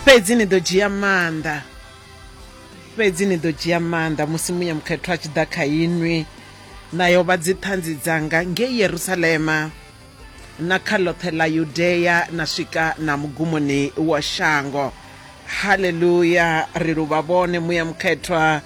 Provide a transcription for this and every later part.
fhedzi ni ḓo dzhia maanḓa fhedzi ni ḓo dzhia maanḓa musi muya mukhethwa a tshi ḓa kha inwi na yo vha dziṱhanzi dzanga ngei yerusalema na kha ḽoṱhe ḽa yudea na swika na mugumoni wa shango haleluya ri luvha vhone muya mukhethwa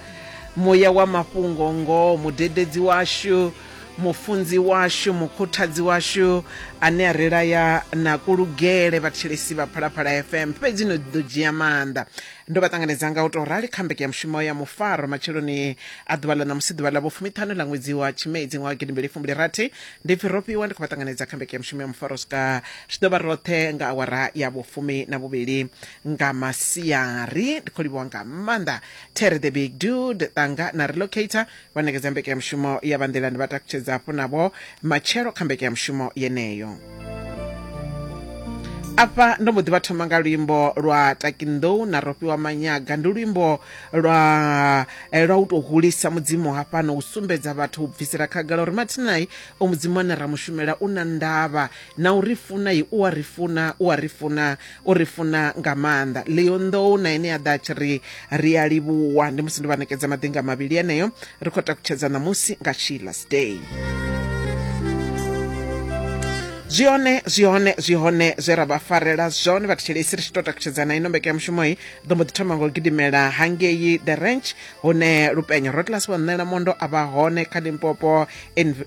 muya wa mafhungo ngoho mudededzi washu mufunzi washu mukhuthadzi washu ane a ri laya na kulugele vhathelesi vha phalaphala fm fhedzi no ḓo dzhia maanḓa ndo vha ṱanganedza nga u tou rali kha mbeke ya mushumo ya mufaro matsheloni a ḓuvha ḽa ṋamusi ḓuvha ḽa vhofumiṱhanu ḽa ṅwedzi wa tshimedzi ṅwaha wa gidimbili fumbili rathi ndi pfi ro fhiwa ndi khou vha ṱanganedza kha mbeke ya mushumo ya mufaro swika zwi ḓo vha roṱhe nga awara ya vhofumi na vhuvhili nga masiari ndi khou livhuwa nga maanḓa tere the big dude ṱanga na relocator vha nekedza mbekanyamushumo ya vha nḓilani vha takutshedza hafhu navho matshelo kha mbekanyamushumo yeneyo afha ndo mbo ḓi vha thoma nga luimbo lwa takinḓou na rofhiwa manyaga ndi luimbo lwa eh, lwa u tou hulisa mudzimu hafhano u sumbedza vhathu u bvisela khagala uri mathinai o mudzimu ane ra mushumela u na ndavha na u ri funa i u a ri funa u a ri funa u ri funa nga maanḓa leonḓou na ene a ḓa a tshi ri ri a livhuwa ndi musi ndo vha ṋekedza maḓinga mavhili eneyo ri khou takutshedza ṋamusi nga sheilas day zwi hone zwi hone zwi hone zwe ra vha farela zwone vhathetshelesi ri tshi tou takutshedzana ino mbekanyamushumoyi ḓo mbo ḓi thoma nga u gidimela hangei the ranch hune lupenyo rotlas wa ṋela mondo a vha hone kha limpopo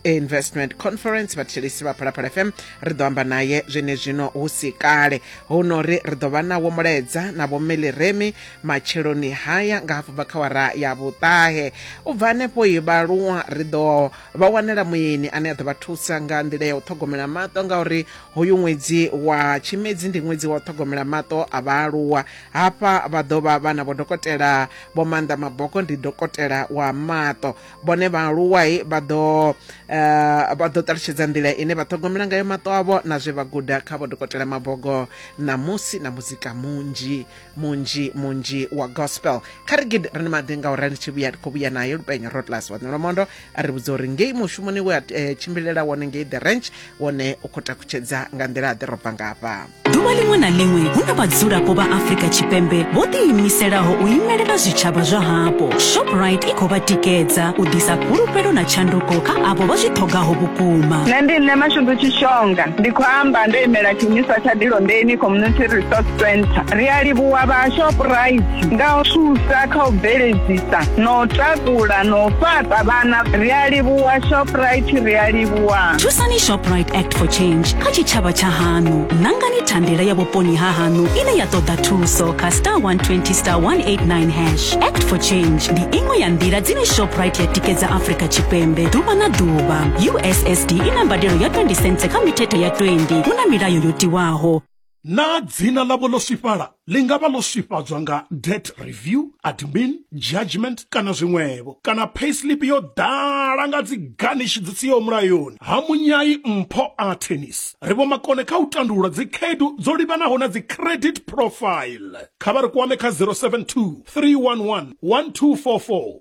investment conference vhathetshelesi vha phalaphala fm ri ḓo amba naye zwenezwino hu si kale huno ri ri ḓo vha nawo mulaedza na vhomeliremi matsheloni haya nga hafhu bva kha wara ya vhuṱahe u bva hanefho i vhaluwa ri ḓo vha wanela muyeni ane a ḓo vha thusa nga nḓila ya u ṱhogomela maṱo ngauri hoyu ṅwedzi wa tshimedzi ndi ṅwedzi wa u ṱhogomela maṱo a vhaaluwa hafha vha ḓo vha vha na vhodokotela vho maanḓa maboko ndi dokotela wa maṱo vhone vhaaluwai vha ḓo eh, vha ḓo ṱalutshedza nḓila ine vha ṱhogomela ngayo maṱo avho na zwe vha guda kha vho dokotela mabogo ṋamusi na muzika munzhi munzhi munzhi wa gospel kha ri gidi ri ni maḓi nga uri ri tshi vhuya ri khou vhuya nayo lupenyo rodlas wa ṋolomondo a ri vhudza uri ngei mushumoni we a eh, tshimbilela wone ngei the ranch wone u khou takutshedza nga nḓila a ḓi robva ngafha ḓuvha ḽiṅwe na ḽiṅwe hu na vhadzulapo vha afrika tshipembe vho ḓiimiselaho u imelela zwitshavha zwa hapo shoprite i khou vha tikedza u ḓisa fhulufhelo na tshanduko kha avho vha zwi ṱhogaho vhukuma nṋe ndi nṋe mashudu tshishonga ndi khou amba ndo imela tshiimiswa tsha dilondeni community resource center ri a livhuwa vha shoprite nga u thusa kha u bveledzisa na u takula na u fhaṱa vhana ri a livhuwa shoprite ri a livhuwa wa thusani shoprite act for change kha tshitshavha tsha haṋu ṋangani thandela ya vhuponi ha haṋu ine ya ṱoḓa thuso kha star 120 star 189 hash act for change ndi iṅwe ya nḓila dzine shoprite ya tikedza afrika tshipembe ḓuvha na ḓuvha ussd i na mbadelo ya 20 cents kha mithethe ya 20 hu na milayo yo tiwaho Naa dzina ḽavho ḽo swifhala? Ḽi nga vha ḽo swifhadzwa nga debt review, admin, judgment kana zwiṅwevho. Kana payslip yo ḓala nga dzi garnish dzi siho mulayoni. Ha munyai mpho a tennis. Ri vhomakone kha u tandulula dzikhaedu dzo livhanaho na dzi credit profile. Kha vha ri kwame kha 072 311 1244.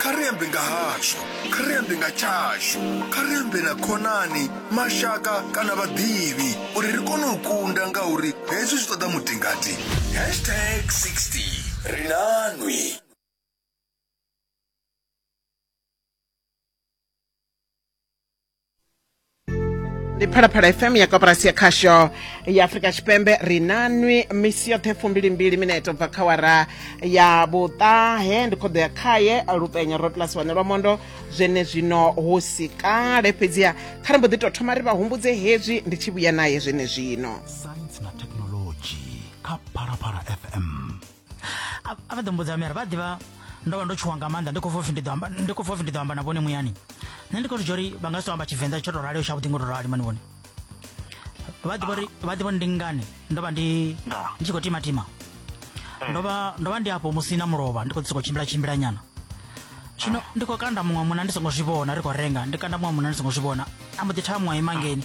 kha ri ambe nga hashu kha ri ambe nga tshashu kha ri ambe na khonani mashaka kana vhaḓivhi uri ri kone u kunda ngauri hezwi zwi ṱoḓa mutingati hashtag 60 ri nanwi ndi phalaphala fm ya koporasi ya khasho ya afurika tshipembe ri na nwi misi yoṱhe fumbilimbili mineto bva kha wara ya vhuṱahe ndi khoḓo ya khaye lupenya ro plus wane lwa mondo zwene zwino hu si kale fhedziha kha ri mbo ḓi tou thoma ri vha humbudze hezwi ndi tshi vhuya naye zwene zwino saintsi na thekhinoḽodzhi kha phalaphala fm A- a vha ḓo mbudza miri vha ḓivha ndo vha ndo tshuwa nga maanḓa ndi khou pfa upfi ndi ḓo amba ndi khou pfa upfi ndi ḓo amba na vhone muyani nṋe ndi khou zwi dzhia uri vha nga si tou amba tshivenḓa tsho tou raleo tshavhuḓi ngo tou rali mani vhone vha ḓivha uri vha ḓivha uri ndi ngani ndo vha ndi Ndaa. ndi tshi khou timatima ndo vha ndo vha ndi afho musi na mulovha ndi khou ḓi sokou tshimbila tshimbila nyana zwino ndi khou kanda muṅwe muna ndi songo zwi vhona ri khou renga ndi kanda muṅwe muna ndi songo zwi vhona a mbo ḓi thaa muṅwe ima ngeni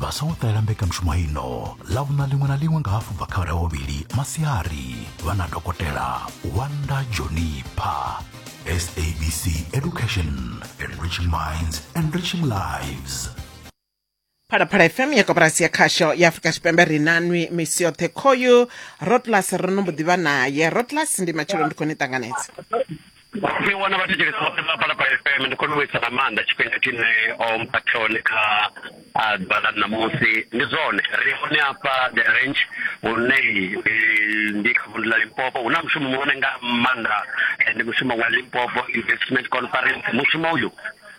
vha songo ṱalela mbekanyamushumo ino ḽavhuna ḽiṅwe na ḽiṅwe nga hafu bva kha vhara vhuvhili masiari vha na dokotela wanda jonipha sabc education enriching minds enriching lives phalaphala fm ya koporasi ya khasho ya afurika tshipembe ri nanwi misi yoṱhe khoyu rotlas ro no mbo ḓi vha naye rotlas ndi matshelo ndi khou ni ṱanganedza ni wana vhathetshelesi vhoṱhe vha balapala fm ndi khou ni vhuisa nga maanḓa tshifhinga tshine o mpha tshone kha ah, ḓuvha ḽa ṋamusi ndi zwone ri hone afha the range hune eh, ndi kha vundu ḽa limpopo hu na mushumo muhone nga maanḓa eh, ndi mushumo wa limpopo investment conference mushumo uyu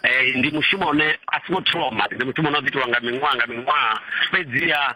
eh, ndi mushumo une a si ngo thoma ndi mushumo une wa ḓo itiwa nga miṅwaha nga miṅwaha fhedziha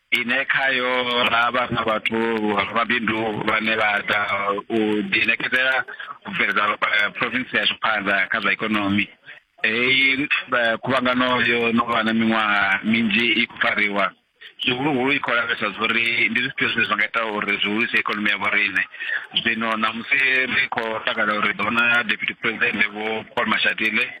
ine khayo ra vha na vhathu rabindu vhane vha ḓa u ḓiṋekedzela u bveledza eh, province yashu phanḓa kha zwa ikonomi heyi eh, khuvhangano yo no vha na miṅwaha minzhi i khou fariwa zwihuluhulu i khou lavhelesa zwa uri ndi zwifhio zwine zwa nga ita uri zwi hulise ikonomi ya vhoriṋe zwino ṋamusi ri khou takala uri ḓo na deputy president vho paul mashatile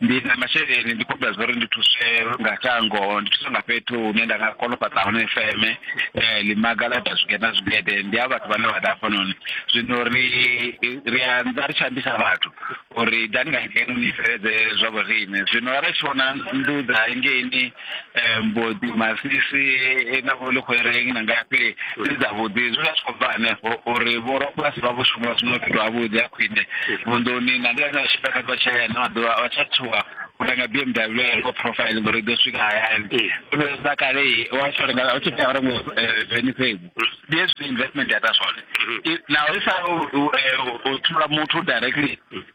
ndi na masheleni ndi khobela zwa uri ndi thuswe nga shango ndi thuswe nga fhethu hune nda nga kona u fhaṱa hone feme um ḽimaga ḽa ita zwigede na zwigede ndi a vhathu vhane vha ḓa hafhanoni zwino ri ri anza ri tshi ambisa vhathu uri dani nga ngeno ni bveledze zwa vhoriṋe zwino arali tshi vhona nnḓu dza hangeini um boḓi masisi e na vho ḽikhwereng na ngafhi ndi dzavhuḓi zwi vha zwi khou bva hanefho uri vhorabulasi vha vho shuma zwino fhethu havhuḓi ha khwine vunḓuni na ndi ane a tshifha kha tshatshaya na maḓuvha vha tsha thuwa u renga b m w ya loko profile ngori i ḓo swika hayani sa kale wa tshi renga u tshi tea u renga veni fhedzi ndi hezwi investment ya ita zwone naho i sa u thula muthu directly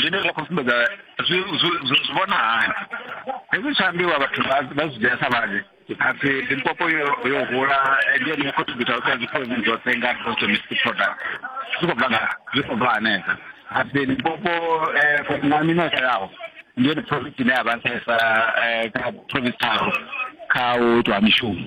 zwine zwa khou sumbedza zwi zwi- zwi zwi vhona hani hezwi tsha ambiwa vhathu vha vha zwi dzhia sa vhanzhi apfi limpopo yo yo hula ndi yone contributor u ṱanzi khozi dzoṱhe nga gross domestic product zwi khou bva nga zwi khou bva hanefha apfi limpopo eh, for na mino yaho ndi yone province ine ya vha nṱhesa eh, kha province tharo kha u itwa ha mishumo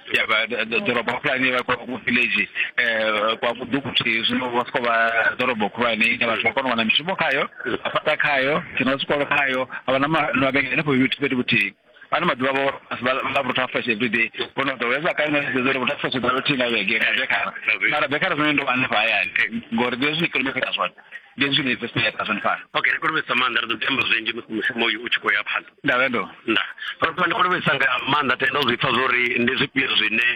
ya vha d- d- ḓorobo khulwane vha kwa ku village eh kwa kudukuthi zwino vha soko vha ḓorobo khulwane ine vhathu vha kona u wana mishumo khayo vha fhaṱa khayo dzina zwikolo khayo a vha na ma- na mavhengele henefho fhethu fhethu vhuthihi ano maḓuvha vho vha vhutha fresh every day vhono ḓo weza kale na zwi uri vhutha fresh dza vhuthihi nga vhege na bekara mara bekara zwine ndo hanefha hayani ngori ndi zwine kilometer zwone ndi hezwi ni vesi ya tazwani fana okay ri khou livhesa maanḓa ri ḓo tamba zwinzhi musi mushumo uyu u tshi khou ya phanḓa ndavendo nda ro ndi khou livhesa nga maanḓa tenda u zwi pfa zwori ndi zwifhio zwine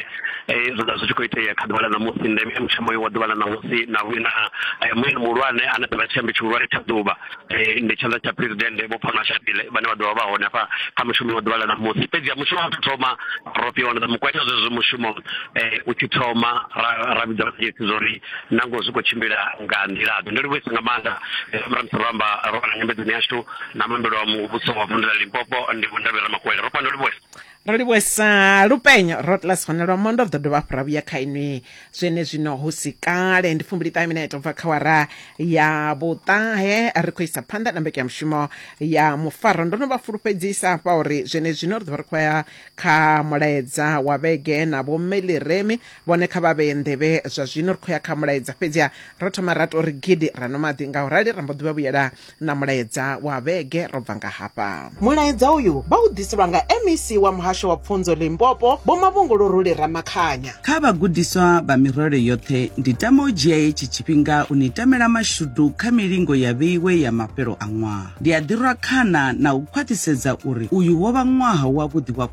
eh, zwi ḓa zwi tshi khou itea kha ḓuvha ḽa ṋamusi ndeme ya mushumo uyu wa ḓuvha ḽa ṋamusi na vhuina eh, mueni muhulwane ane ḓovha tshiambi tshihulwane tsha ḓuvha eh, ndi tshanḓa tsha presidennde vho pfana shatile vhane vha ḓovha vha hone hafha kha mushumo wa ḓuvha ḽa ṋamusi fhedzi ya mushumo wa tou thoma ro fhiwa na mukweta zwezwo mushumo u tshi thoma ra vhidza vhaḓisi zwori nangoho zwi khou tshimbila nga nḓilaḓe ndo livhuwesa nga maanḓa ramusi ro amba ro vha na nyambedzoni yashu na muambelo wa muvhuso wa vundu la limpopo ndi vhundavhe ramakwele ro fhano livhuwesa ro livhuwesa lupenyo rotlas hone lwa mondo ri ḓo dovha hafhu ra vhuya kha inwi zwene zwino hu si kale ndi fumbili ṱahe mina ita bva kha wara ya vhuṱahe ri khou isa phanḓa na mbeke ya mushumo ya mufaro ndo no vha fulufhedzisa hafha uri zwene zwino ri ḓo vha ri khou ya kha mulaedza wa vhege na vhomeliremi vhone kha vha vhee nḓevhe zwa zwino ri khou ya kha mulaedza fhedziha ro thoma ra to ri gidi ra no maḓi nga u rali ra mbo ḓi vha vhuyela na mulaedza wa vhege ro bva nga hafha mulaedza uyu vha u ḓiselwa nga mec wa muhasho wa pfunzo limpopo vho mavhunguluruli ramakhanya kha vhagudiswa vha mirole yoṱhe ndi tama u dzhia hetshi tshifhinga u ni tamela mashudu kha milingo ya vheiwe ya mafhelo a ṅwaha ndi a ḓirwa khana na u khwaṱhisedza uri uyu wo vha ṅwaha wavhuḓi wa